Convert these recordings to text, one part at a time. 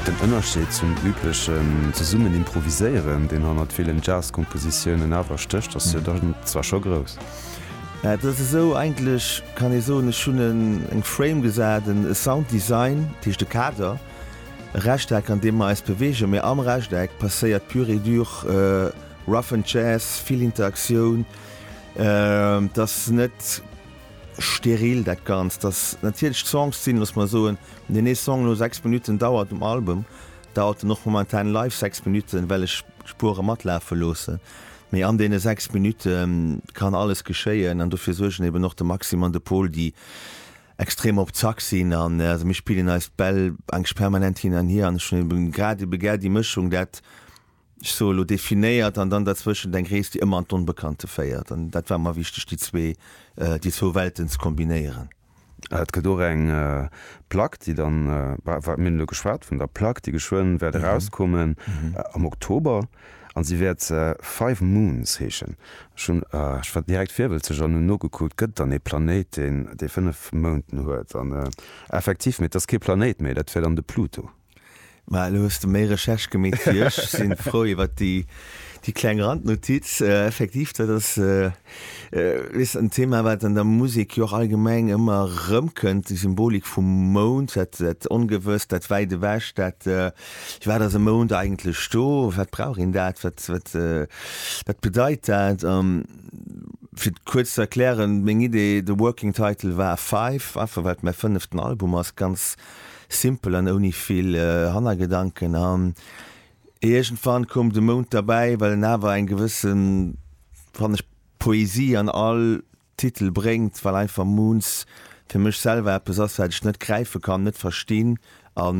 Den Ënnerscheed zum üblechen zesummen improviséieren, deen hannert villen Jazz-Kompositiounen awer stécht, ass jo dann zwar scho grouss. Et ass esou, eigentlech kann ee soen, ech hunn eng Frame gesat, e Sounddesign, dat heescht e Kader, e Rechteck, an deem mer eis beweegen, mä am Rechteck passéiert pur et dur Rough and Jazz, vill Interaktioun. Et ass net. Steril dat Ganzt, dass natierlech d'Songs sinn, looss mer soen, deen ee Song elo sechs Minutten dauert um Album, dauert en och momentan live sechs Minutten, well ech d'Spuere matlafe loosse. Mee an deene sechs Minutte kann alles geschéien an dofir suergen eben och de Maxime an de Pol, déi extrem op Zack sinn. An also mir spillen eis d'Bäll enk permanent hin an hier an ech hunn eben grad ebe gär déi Mëschung, dat, ech soe lo, definéiert an dann derzwëschent eng Rees, déi ëmmer an d'Onbekannte féiert. An dat war mer wichteg, déi zwee, déi zwou Welten ze kombinéieren. Et gëtt och eng Plack, déi dann, mir hunn elo geschwat vun der Plack, déi geschwënn wäert erauskommen am Oktober an si wäert Five Moons heeschen. Ech hunn, ech war direkt virwëlzeg an hunn nogekuckt, gëtt et dann ee Planéit, deen déi fënnef Mounten huet? An effektiv, mee et ass kee Planéit méi, dat wär dann de Pluto. Ma elo hues de méi Recherche gemeet wéi ech. Ech sinn frou iwwert déi déi kleng Randnotiz. Effektiv, dat ass weess en Thema wat an der Musek jo och allgemeng ëmmer erëmkënnt, déi Symbolik vum Mound, dat dat Ongewësst, dat wäit ewech, dat fir wat ass e Mound eigentlech do, wat brauch een dat, wat wat wat bedeit dat. A fir et kuerz ze erklären, meng Idee, de Working Title war Five, einfach well et mäi fënneften Album ass, ganz. Simpel an ouni vill Hannergedanken an iergendwann koum de Mound derbäi, well en awer eng gewësse, fannen ech, Poesie an all Titel bréngt, well einfach Moons fir mech selwer eppes ass, wat ech net gräife kann, net verstinn a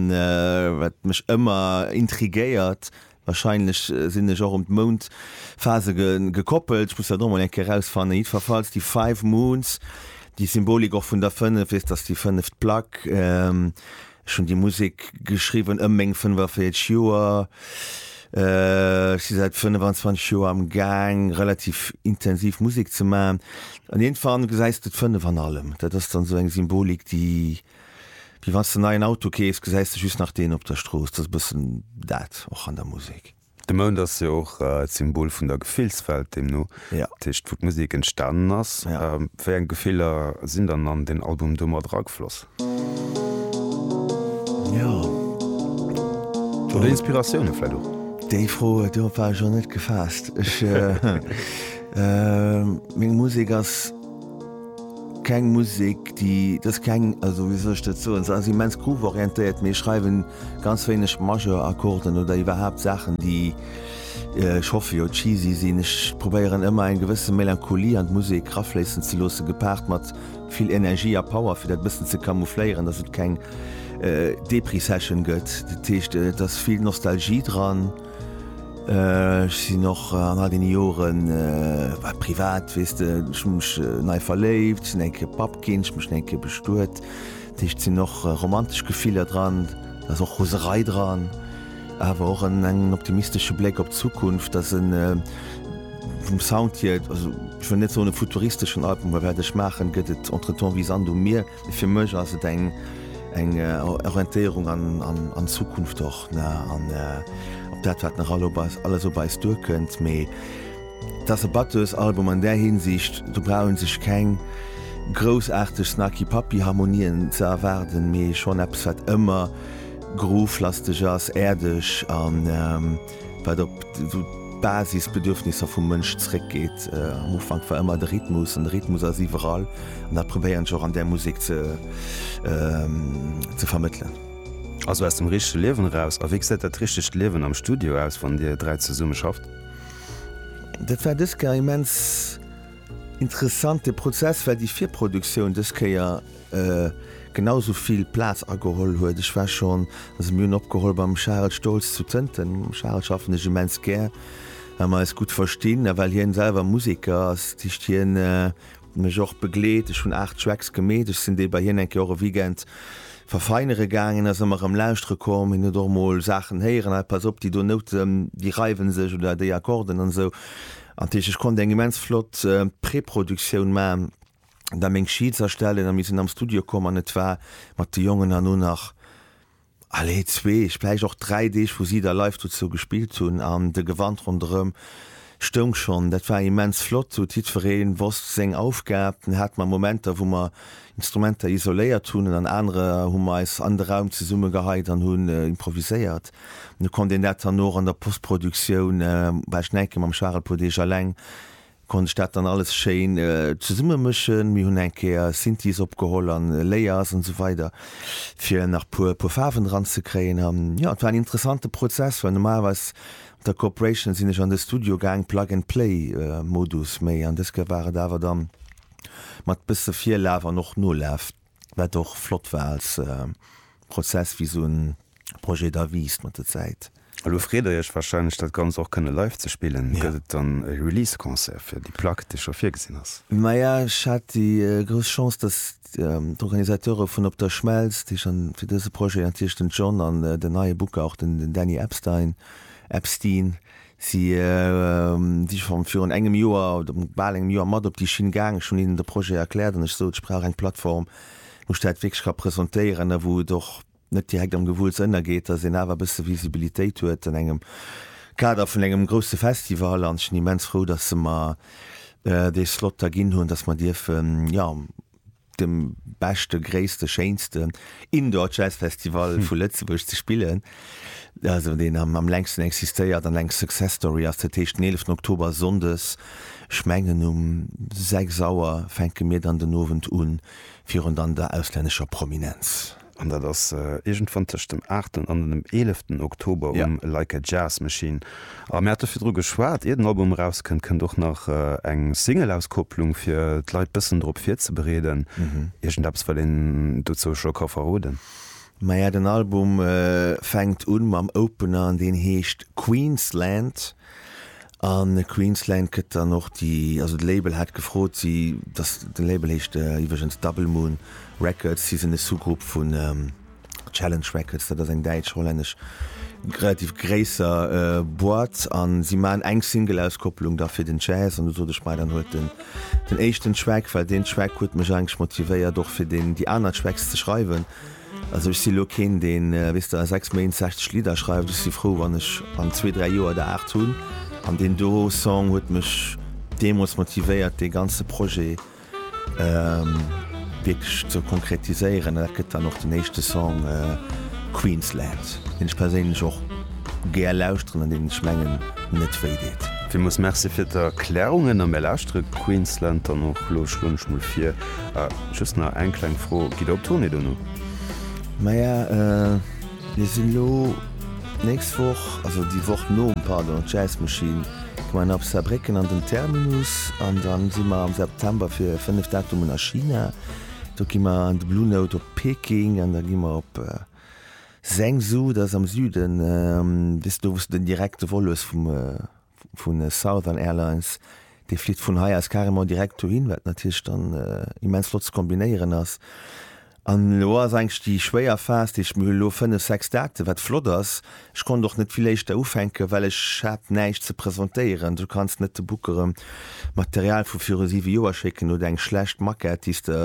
wat mech ëmmer intriguéiert, Wahrscheinlech sinn ech och un d'Moundphase gekoppelt, ech muss dat och mol eng Kéier erausfannen. Jiddferfalls déi Five Moons, déi Symbolik och vun der Fënnef, weess dass déi fënneft Plack, ech hunn déi Musek geschriwwen ëm meng 45 Joer, ech si säit 25 Joer am Gaang relativ intensiv Musek ze maachen an iergendwann gesäis de d'Fënnef an allem. Dat ass dann esou eng Symbolik déi Wéi wann s de neien Auto keefs, gesäis de just nach deen op der Strooss. Dat ass e bëssen dat och an der Musek. De Mound ass jo och d'Symbol vun der Gefillswelt deemno, dat heescht wou d'Musek entstanen ass. Wéi eng Gefiller sinn dann an deen Album do mat eragefloss? Oder Inspiratioune vläicht och? Déi Fro, dorop war ech och net gefaasst. Meng Musek ass. Keng Musek déi dës keng, also wéi soll ech dat soen, se ass immens groove-orientéiert, mee ech schreiwen ganz wéineg Majeur-Akkorden oder iwwerhaapt Saachen déi, ech hoffe jo, cheesy sinn. Ech probéieren ëmmer eng gewësse Melancholie an d'Musek rafléissen ze loossen, gepaart mat vill Energie a Power fir dat e bëssen ze camoufléieren, dass et keng Depri-Session gëtt. Dat heescht et ass vill Nostalgie dran. Ech sinn och an all deene Joren, war privat, weess de, ech hu mech nei verléift, sinn eng Kéier Papp ginn, ech hu mech eng Kéier bestuet. Dat heescht, et sinn och romantesch Gefiller dran, et ass och Roserei dran, awer och en engen optimistesche Bléck op d'Zukunft. Ass e vum Sound hier, also ech wëll net soen e futuristeschen Album, well wat ech maachen, gëtt et entretemps wéi Sand um Mier. Fir mech ass et eng eng Orientéierung an Zukunft och an op dat wat nach alles op eis duerkënnt. Mee et ass e battëes Album an där Hinsicht, do brauch ee sech keng groussaarteg Snarky-Puppy-Harmonien ze erwaarden, mee schonn eppes wat ëmmer groove-lasteg ass, äerdeg an. wat op esou d'Basisbedürfnisser vum Mënsch zréckgeet. Am Ufank war ëmmer de Rhythmus an de Rhythmus ass iwwerall an dat probéieren ech och an där Musek ze ze vermëttelen. Also aus dem richtege Liewen eraus. A wéi gesäit dat richtegt Liewen am Studio aus, wann dir dräi zesumme schafft? Dat war dës Kéier immens interessant de Prozess, well déi Virproduktioun dës Kéier, genau sou vill Plaz ageholl huet. Ech war schonn, a se mir hunn opgeholl, beim Charel Stolz zu Tënten. Mam Charel schaffen ech immens gär, well mer eis gutt verstinn a well hien selwer Museker ass. Dat heescht, hien huet mech och begleet. Ech hunn 8 Tracks gemeet. Ech sinn déi bei hien eng Kéier och e Weekend verfeinere gaangen. Da si mer erëm lauschtere komm. Hien huet och mol Saachen héieren, hei pass op, déi do Nouten, déi reiwen sech oder déi Akkorden an esou. Dat heescht, ech konnt eng immens flott Preproduktioun maachen. da meng Sheets erstellen a mir sinn am Studio komm an et war mat de Jongen herno nach, allez, zwee, vläicht och dräi Deeg, wou si da live dozou gespillt hunn an de Gewand ronderëm stoung schonn. Dat war immens flott, sou jiddweree wosst seng Aufgab. Dann hate mer Momenter, wou mer Instrumenter isoléiert hunn an an anere hu mer eis an de Raum zesummegeheit an hunn improviséiert. An da konnt een dat dann och an der Postproduktioun, war ech en enke mam Charel Podesch eleng, Konnt ech dat dann alles schéin zesumme mëschen. Mir hunn eng Kéier Synthies opgeholl an Layers an esou weider fir nach puer puer Faarwen dran ze kréien. An jo, et war en interessante Prozess, well normalerweis mat der Corporation sinn ech an de Studio gaang, Plug and Play Modus, mee an dës Kéier war et awer dann mat bësse Virlaf an och Nolaf. wat och flott war als Prozess, wéi esou e Projet da wiisst mat der Zäit. Elo freet der iech warscheinlech, dat Ganzt och kënne live ze spillen. Gëtt et dann e Release-Concert fir déi Plack, déi scho virgesinn ass? Maja, ech hat déi grouss Chance, datt d'Organisateure vun Op der Schmelz, déi schonn fir dëse Projet, natierlech den John an den neie Booker, och den Danny Epstein, Epstein, Si si scho virun engem Joer oder bal engem Joer mat op déi Schinn gaangen. Ech hunn hinnen de Projet erkläert an ech sot, ech brauch eng Plattform, wou ech dat wierklech ka presentéieren a wou et och net direkt am Gewulls ënnergeet, datt een awer e bësse Visibilitéit huet an engem Kader vun engem grousse Festival. An ech sinn immens frou, datt se mer dee Slot da ginn hunn, datt mer dierfen, jo, dem beschte, gréisste, schéinsten Indoor Jazz Festival vu Lëtzebuerg ze spillen, also deen am längsten existéiert an eng Success Story ass. Dat heescht den 11 Oktober Sonndes, ech mengen um 6 Auer fänke mir dann den Owend un, virun dann der auslännescher Prominenz. An dat ass iergendwann tëscht dem aachten an dem eeleften Oktober um Like a Jazz Machine. A mir hate virdru geschwat, ier den Album erauskënnt, kënnt och nach eng Singleauskopplung, fir d'Leit bëssen drop virzebereeden. Iergendeppes wëllt een dozou scho ka verroden? Maja, den Album fänkt un mam Opener an deen heescht Queensland. A Queensland gëtt dann och déi, also de Label hat gefrot, si, dass, den Label heescht iwwregens Double Moon Records, si sinn e Sous-Grupp vun Challenge Records, dat ass eng däitsch-hollännesch relativ gréisser Boîte, a si maachen eng Single-Auskopplung da fir den Jazz. An du sot ech, Mei, dann huelt den den éischten Track, well deen Track huet mech eigentlech motivéiert och fir deen, déi aner Tracks ze schreiwen, Also ech si lo keen deen, weess de, a 6 Méint 60 Lidder schreift. Ech si frou wann ech an zwee, dräi Joer der 8 hunn. An deen do Song huet mech deemools motivéiert dee ganze Projet wierklech ze konkretiséieren. Dat gëtt dann och den éischte Song Queensland, deen ech perséinlech och gär lauschteren an deen ech mengen net wéi deet. Villmools Merci fir d'Erklärungen a mir lauschtere Queensland dann och lo, schloen ech mol vir. Ah, just nach eng kleng Fro, Gitt Der op Tournée dono? Maja, mir sinn elo d'nächst Woch, also déi Woch nom, pardon, d'Jazz Machine gi mer nach op Saarbrécken an den Terminus an da si mer am September fir fënnef Datumen a China. Do gi mer an de Blue Note op Peking an da gi mer op Zhengzhou, dat ass am Süden, weess de do, wou s de den direkte Vol hues vum. vu Southern Airlines, dee flitt vun hei aus carrément direkt dohin, wat natierlech dann immens flott ze kombinéieren ass. An elo ass eigentlech déi schwéier Phas, déi ech mir elo fënnef, sechs Daten, wat flott ass, ech konnt och net vill éischter ufänken, well ech hat näischt ze presentéieren. Du kanns net de Bookere Material vu viru siwe Joer schécken oder eng schlecht Maquette, déi s de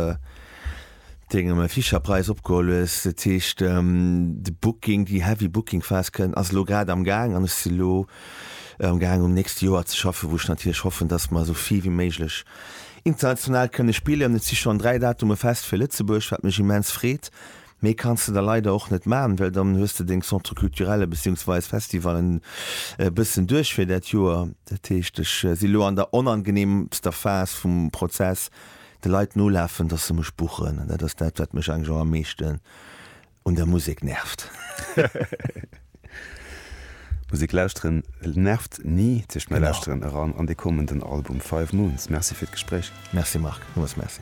Dengem Fischerpreis opgeholl hues. Dat heescht de Booking, déi heavy Booking Phase kënnt, ass elo grad am Gaang an ech si lo am Gaang um nächste Joer ze schaffen, wou ech natierlech hoffen, dass mer esou vill wéi méiglech international kënne spillen. Et si schonn 3 Datume fest fir Lëtzebuerg, wat mech immens freet. Méi kanns de der leider och net maachen, well dann hues de deng Centres culturelle beziehungsweise Festivallen e bëssen duerch fir dat Joer. Dat heescht ech si lo an der onangeneemster Phase vum Prozess, De Leit nolafen, dass se mech buchen, an dat ass dat, wat mech eigentlech och am meeschten un der Musek nervt. Musek lauschteren nervt ni, zicht mäi Lauschteren eran an dee kommenden Album Five Moons. Merci fir d'Gespréich. Merci Marc, nochmools Merci.